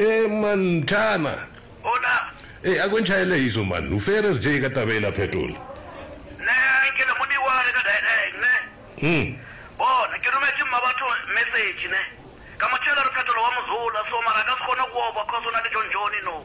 Ee, Montana. Ee, a kwentšha e le iso, man. U fere re tšee ka taba e la phetola. Hmm. Bona, ke rometše mmabatho mesetši, ne. Ka mo tšeela re phetola wa mozola, so mara a ka se kgone go oba, cos o na le John John, you know.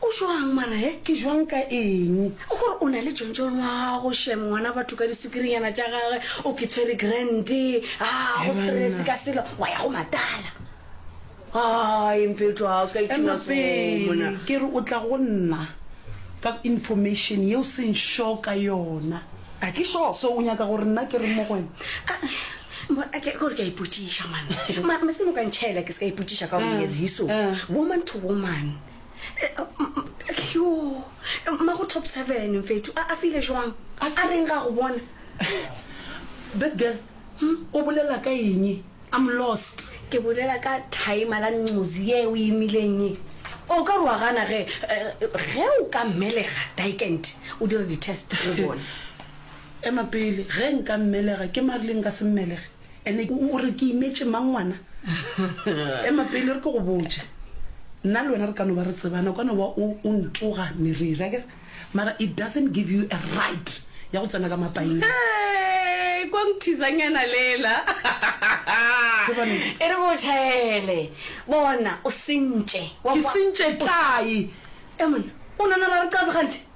O jwang mara he? Ke jwang ka eng? O gore o na le John John wa gago shem ngwana batho ka disukirinyana tša gage o ke tshwere grand ha go stress ka selo wa ya go matala. Hai mfetho ha o ska itshuma sona. Ke re o tla go nna ka information ye o seng sure ka yona. A ke sure. So o nyaka gore nna ke reng mo go wena? Bona ke gore ke a ipotšiša man. Mara meskino ka ntšhela ke ska ipotšiša ka gore it's hiso. Woman to woman. yo mma go top seven mfethu a file jwang a reng ga go bona that girl hmm? o bolela ka eng i'm lost ke bolela ka time la ncozi ye o imileng e o ka roa gana ge eh, ge o ka mmelega dikent o dire di-test le bone ema pele ge nka mmelega ke marleng ka se mmelege Ene o re ke imetše mang ngwana? Ema pele re ke go botše. Nna le wena re ka no ba re tsebana, o ka no ba o o ntsoga meriri, akere? Mara it doesn't give you a right ya go tsena ka mapaing. Hey, kwa nthizanyana lela. Ke ba nnete. E re ke o tšhaele. Bona, o sentše. Wa Ke kwa? sentše O sa- kae? E monna, o nana ra re qave ganthe?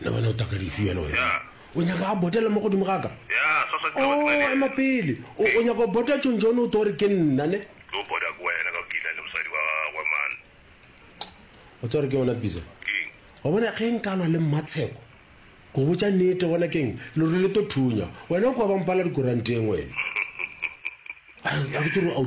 le bona o taka dife yena wena o nyaka a botele mo godimo ga ka o ema pele o nyaka o bota tšong jone o to gore ke nna ne o tsore ke yona bisa wa bona ge nkalwa le mmatsheko go botsa nete bona keng lore le to thunya wena o kwa bampala dikoranteng wena a ke tsore a o